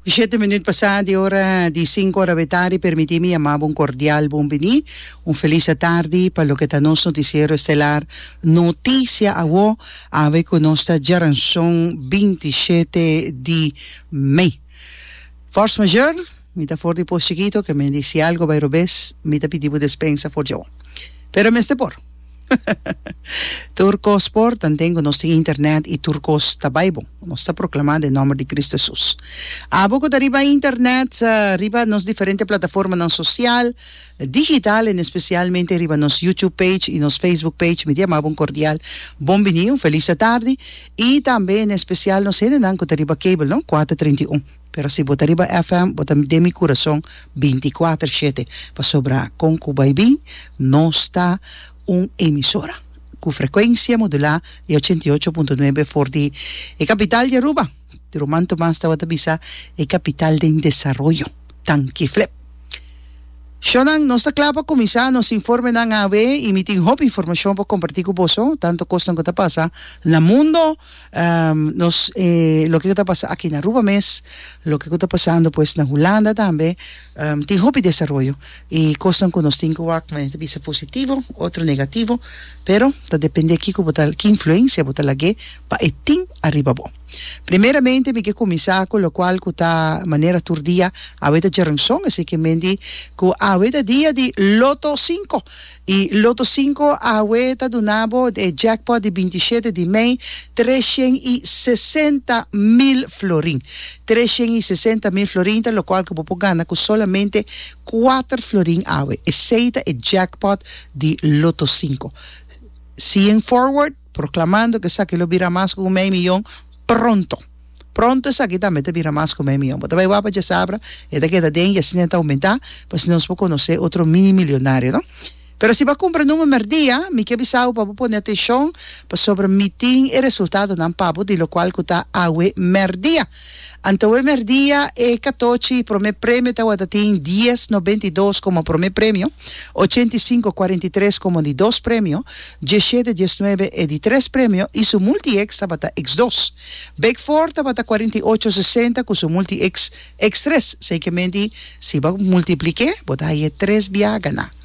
Di shete minüt pasá di ora di sinku ora be tardi permití mi yamá bo un kordial bon biní, un felis atardi pa loke ta nos notisiero estelar Noticia Awor! awe ku nos ta djaranson binti shete di mei. Fors Mayor, mi ta for di pos chikito, ke men di si algo bai robes, mi ta pidi bo despensa for djawo. Pero mester por. Tur kos por, tanten ku nos tin internet i tur kos ta bai bon. Nos ta proklamá den nòmber di Kristu Hesus. Abo ku ta riba internet, riba nos diferente plataformanan sosial, digital, en espesialmente riba nos YouTube page i nos Facebook page, mi diama bo un kordial bon biní, un felis atardi, i tambe en espesial nos hendenan ku ta riba cable, no, kuater treinta i un. Pero si bo ta riba FM bo ta den mi curason binticuater shete pasobra con cu bay bin nos ta un emisora cu frecuencia modula di ochenta i ocho punto nuebe for di e capital di Aruba. Di Roman Tomas tawata bisa e capital den desaroyo. Tanki flep. Shonan nos ta cla pa cuminsa nos informenan awe y mi tin hopi informacion pa comparti cu boso tanto cosnan cu ta pasa na mundo Um, nos, eh, loke ku ta pasa aki na Aruba mes, loke ku ta pasando pues na Hulanda tambe, um, tin hopi desaroyo. I kosnan ku nos tin ku wak, mane ta bisa positivo, otro negativo, pero ta dependé kiko bo ta, ki influensia bo ta lag'é pa e tin ariba bo. Primeramente mi ke kuminsá ku lokual ku ta manera tur dia, awe ta Jernsong, asiki men di ku awe ta dia di Lotto Sinko. E Loto Sinko awe ta duna bo e jackpot di binti shete di mei, tres shen i sesenta mil florin. Tres shen i sesenta mil florin ta lokual ku bo por gana ku solamente kuater florin awe. Esei ta e jackpot di Loto Sinko. See in forward. Proclamando cu esaki lo bira mas cu un mei miyon pronto. Pronto esaki tambe ta bira mas cu un mei miyon. Bo ta bai wak pa Chasabra, e ta keda den y asina e ta aumentá pa asina nos por conoce otro mini milionario, no? Pero si bo a cumpra number merdia, mi kier bisa bo pa bo pone atencion pasobra mi tin e resultadonan pa bo di locual cu ta awe merdia. Anto e merdia e katochi prome premio tawata tin dies nobenta i dos komo prome premio, ochenta i sinku kuarenta i tres komo di dos premio, diesshete dies nuebe e di tres premio i su multieks tabata eks dos. Bek for tabata kuarenta i ocho sesenta ku su multieks eks tres, seikiamenti si bo multipliké bo ta haye tres biaga na.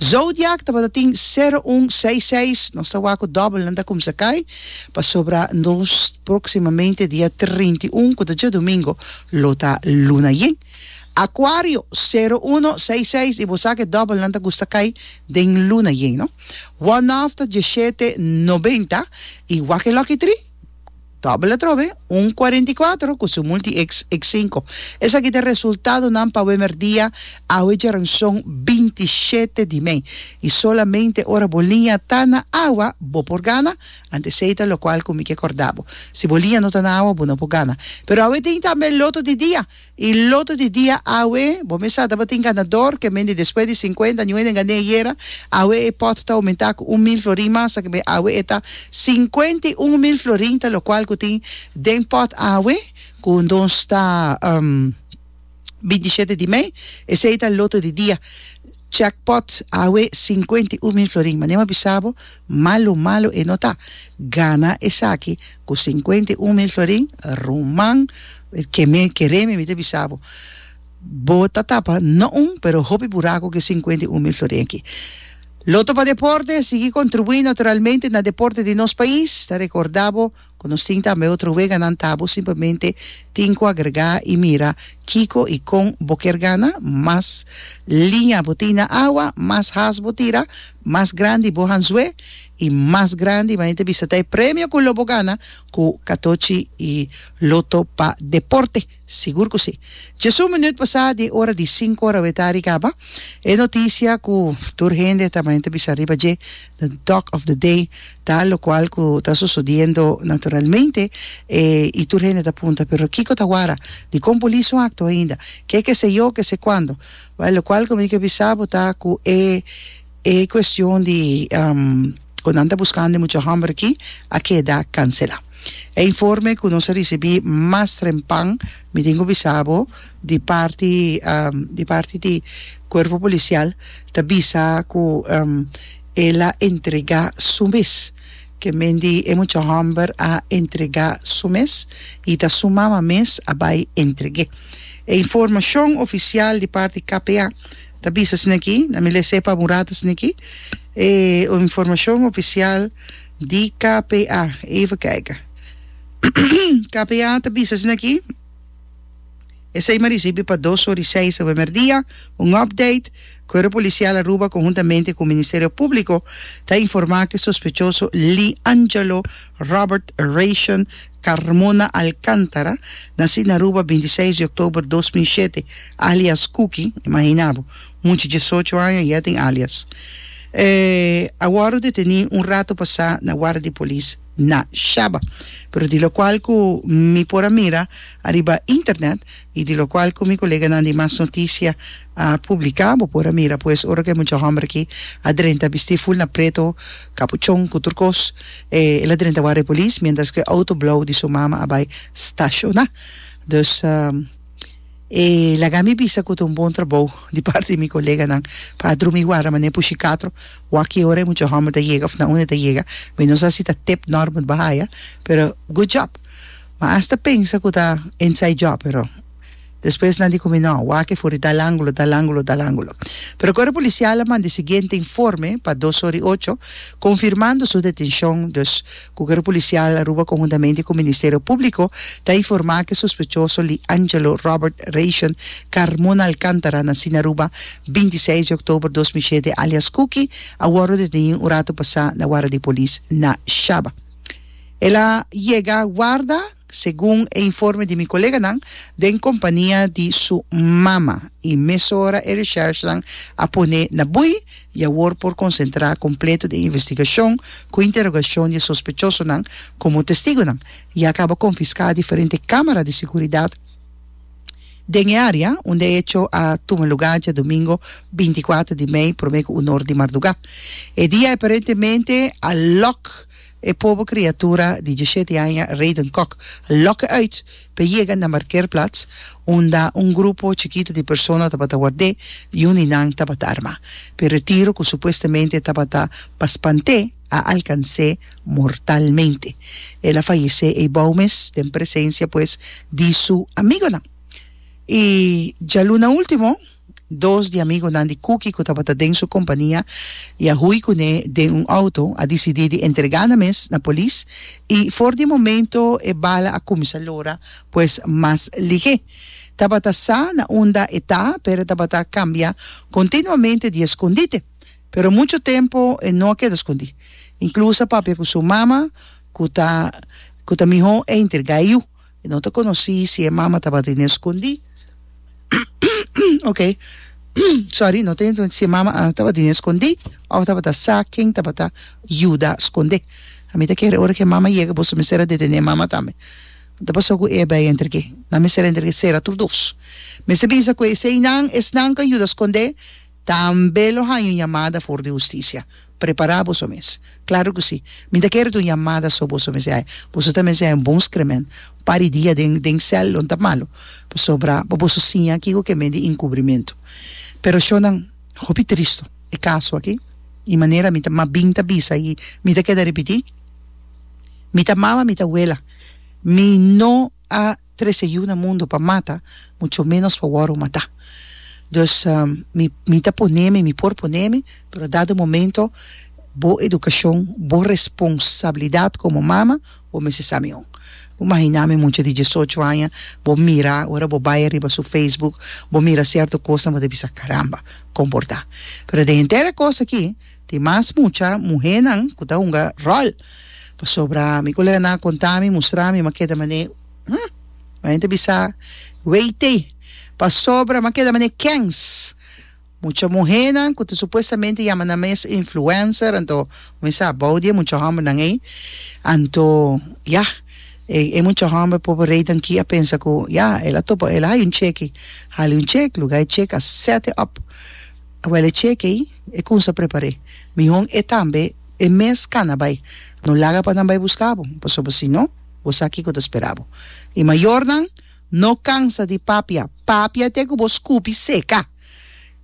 Zodiac tabata tin sero un seis seis, nos ta wak ku dòbelnan ta kumsa kai, pasobra nos próksimamente dia trinta i un ku ta djadumingo lo ta luna yen. Acuario, sero uno seis seis i bo sa ku e dòbelnan ta gusta kai den luna yen, no? One of ta diashete noventa i wak e lòkitri? Dòbbel atrobe, un kuarenta i kuater ku su multi-eks e sinku. Esaki ta resultadonan pa Wemer dia awe djaranson binti i shete di mei. I solamente ora bo liña ta na awa bo por gana, antes esei ta lokual ku mi ke kòrda bo. Si bo liña no ta na awa bo no por gana. Pero awe tin tambe loto di dia. Y loto di dia awe, bo mes sa tabatin ganador, ke men di despues di cincuenta aña, un hende gané ayera, awe e pot ta aumenta cu un mil florin mas, ta kibé awe e ta cincuenta y un mil florin, ta locual cu tin den pot awe, cu nos ta binti shete di mei, esey ta loto di dia, check pot awe cincuenta y un mil florin, manera mi a bisa bo, Malu malu e no ta. Gana esaki ku sinkuenta i un mil florin? Ruman, ke me keré mi mi ta bisa bo, bo ta tapa no un, pero hopi buraku ku e sinkuenta i un mil florin aki. Loto pa Deporte, sigui kontribuí naturalmente na deporte di nos pais. Ta rekordá bo. Cu nos tin tambe otro weganan ta bo simplemente tin cu agrega y mira kico y con bo kier gana, mas liña bo tin na awa, mas haas bo tira, mas grandi bo hanzue y mas grandi bo mente bisa ta e premio cu lo bo gana cu catochi y loto pa deporte. Sigur ku si. Djes un minüt pasá di e ora di sinku ora awé ta rigaba e notisia ku tur hende ta bai ta bisa riba dje, The Doc of the Day, ta lokual ku ta sosodiendo naturalmente e i tur hende ta punta, Pero kiko ta wara? Di kon bo liso akto ainda? Ke keseyó, kesekuando? Bai, lokual ku mi ke bisa bo ta ku e. E cuestion di cu nan ta buscando e mucha homber aki a keda cancela. E informe cu nos a ricibi mas trempan, mi tin cu bisa bo, di parti di parti di cuerpo policial ta bisa cu el a entrega su mes, ke men di e mucha homber a entrega su mes y ta su mama mes a bay entrege. E informacion oficial di parti KPA. Ta bisa esneki, na mi lese pa un rato esneki, e informashon ofisial di KPA. Eva kijk. KPA ta bisa esneki, Esei mi a risibi pa dos ora i seis awe merdia, un update, Cuerpo Policial Aruba conjuntamente cu Ministerio Publico ta informa cu e sospechoso Lee Angelo Robert Rayshon Carmona Alcántara, nací na Aruba binti seis di oktober dos mil shete, alias Kuki, imagina bo, mucha diesocho aña i ya tin alias, a wòrdu detené un rato pasá na warda di polis na Shaba, pero di lokual ku mi por a mira ariba internet i di lokual ku mi koleganan di Mas Notisia a publica, bo por a mira pues ora cu e mucha homber aki a drenta bisti full na preto, capuchon cu tur cos, el a drenta warda e polis mientras cu e auto blauw di su mama a bay stashona. Dus e laga mi bisa cu ta un bon trabouw di parti di mi coleganan pa a drumi warda mane pushi catro waki ora e mucha homber ta yega of na unda e ta yega, mi no sa si ta tip Norbert Bahaya pero good job. Ma asta pensa cu ta inside job pero. Despues nan di ku mi, No, wak e for i dal angulo, dal angulo, dal angulo. Pero kor e polisial a manda e siguiente informe pa dos ora i ocho, konfirmando su detenshon, dus ku kor e polisial Aruba konhuntamente ku Ministerio Públiko ta informá ku e sospechoso li Angelo Robert Rayshon Carmona Alcántara, nasí na Aruba binti seis di oktober dos mil shete alias Kuki, a wòrdu detení un ratu pasá na wara di polis na Shaba. El a yega warda. segun e informe di mi koleganan den kompania di su mama, i mesora e recherchenan a pone na bui i awor por konsentrá kompleto den investigashon ku interogashon di e sospechosonan komo testigonan. Ya kaba konfiská diferente kámara di seguridat den e área unda e hecho a tuma lugá djadomingo binti kuater di mei promé ku un or di mardugá. E dia e parentemente a lòk. E pobe kriatura di diesshete aña Rayden Kok a loke uit pa e yega na markeerplaats unda un grupo chikitu di persona tabata ward'é i un di nan tabata armá. Pero e tiro ku supuestamente tabata pa spant'é a alkans'é mortalmente. El a fayesé eibou mes den presensia pues di su amigonan. I djaluna último. dos di amigunan di Kuki ku tabata den su kompania i a hui kuné den un outo, a disidí di entregá nan mes na polis i for di momento e bala a kuminsá lora pues mas lihé. Tabata sa na unda e ta, pero e tabata kambia kontinuamente di eskondite. Pero muchu tempu e no a keda skondí. Inkluso a papia ku su mama ku ta ku ta mihó e entregá e yu. E no ta konosí si e mama tabata na e skondí. Oke, sòri, no ta yenta si e mama a tabata na e skondí òf tabata sa ken tabata yuda skond'é. A mi ta kere ora ku e mama yega boso mester a detené e mama tambe. Lo ta pasó ku Eba i Enrike. Nan mester a Enrike sera tur dos. Mester bisa ku eseinan esnan ku a yuda skond'é. Tambe lo haña un yamada for di hustisia. Prepará boso mes. Klaru ku sí. Mi ta kere ta un yamada so boso mesiae. Boso ta mesiae un bon skremen pa di dia den den sèl lo ta malu pasobra pa boso siña kiko ke medi inkubrimentu. Pero shonnan, hopi tristu e kaso aki i manera mi ta mas bin ta bisa i mi ta keda ripití, mi ta mama mi ta wela mi no a trece yu na mundo pa mata, mucho menos pa wòrdu matá. Dus, mi, mi ta poné mi, mi por poné mi, pero dado momento, bo edukashon, bo responsabilidat komo mama, bo mester sa miun. Bo mahiná mi mucha di diesocho aña, bo mira, ora bo bai ariba su Facebook, bo mira sierto kos, bo ta bisa, Caramba, komportá. Pero den henter e kos akí, Tin mas mucha muhénan ku ta hunga ròl, pasobra mi koleganan a kontá mi, mustra mi, m'a keda man'é hm! Mi ta bisa, Weit'é! Pasobra m'a keda man'é kèns? Mucha muhénan ku ta supuestamente yama nan mes influencer, anto mi mester a bou di e mucha hòmbernan ei, anto ya, e mucha hòmber por por reitan ki a pensa ku ya, el a topa, el a haya un cheki, hali un chek, lugá e chek a sèt e òp, a wèl e chek ei. E cunsa prepar'é. Mihon e tambe e mes cana bai. No laga pa nan bai busca bo, pasobra si no, bo sa kico ta spera bo. I mayornan, no cansa di papia. Papia te cu bo scupi seca.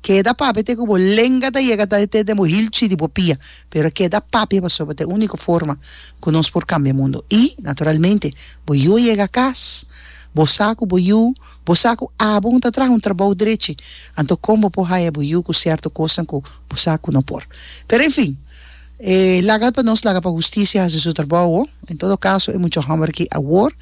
Keda papia te cu bo lenga ta yega ta te den bo hilchi di bo pia, pero keda papia pasobra ta e unico forma cu nos por cambia mundo. I, naturalmente, bo yu a yega cas. Bo sa cu bo yu. Bo sa ku abo un ta traha un trabou drechi, anto kon bo por haya bo yu ku sierto kosnan ku bo sa ku no por? Pero enfin, e laga pa nos laga pa hustisia hasi su trabou ho. En todo kaso e mucha hòmber aki awor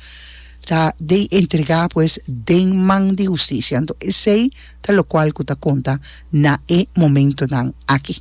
ta den entregá pues den man di hustisia. Anto esei ta lokual ku ta konta na e momentunan aki.